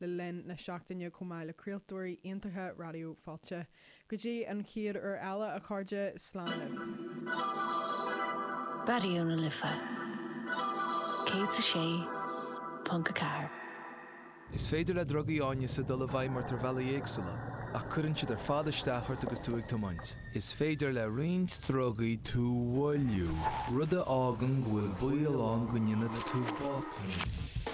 le linn na seachtaine chomh maith le craoltóirí iontacha Raidió Fáilte. Go dtí an chéad uair eile, a chairde, slán libh. Raidió na Life 106.4. Is féidir le drugaí áineasa dul i bhfeidhm ort ar bhealaí éagsúla, ach cuireann siad ar fad isteach ort agus tú ag tiomáint. Is féidir le roinnt drugaí tú a mhoilliú, rud a fhágann go bhfuil baol ann go ndéanfaidh tú botúin.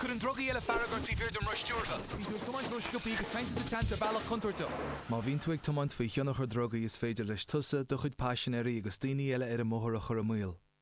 Cuireann drugaí eile fearg ort taobh thiar den roth stiúrtha. Bíonn tú ag tiomáint ró-sciobtha agus téann tú sa tseans ar bhealach contúirteach. Má bhíonn tú ag tiomáint faoi thionchar drugaí is féidir leis tusa, do chuid paisinéirí agus daoine eile ar an mbóthar a chur i mbaol.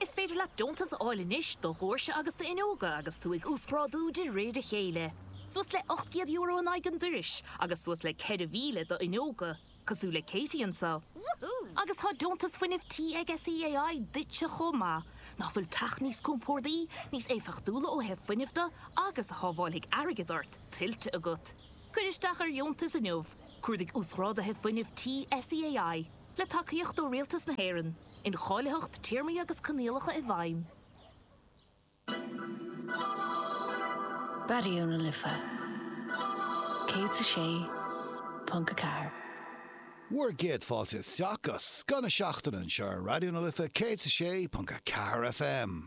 Is féidir leat deontas a fháil anois do dhoirse agus d'fhuinneoga agus tú ag uasghrádú de réir a chéile, suas le €800 in aghaidh an dorais agus suas le 4,000 do fhuinneoga, cosúil le Katie anseo. Agus tá deontas fuinnimh tí ag SEAI duitse chomh maith, nach bhfuil teach níos compórdaí, níos éifeachtúla ó thaobh fuinnimh de agus a shábháilfidh airgead ort, tuillte agat. Cuir isteach ar dheontas inniu, cuardaigh Uasghráduithe Fuinnimh Tí SEAI, le tacaíocht ó Rialtas na hÉireann. Incháilitheacht, Téarmaí agus Coinníollacha i bhfeidhm. Raidió na Life 106.4. Bhur gcéad fáilte isteach go Scoth na Seachtaine anseo ar Raidió na Life 106.4 FM.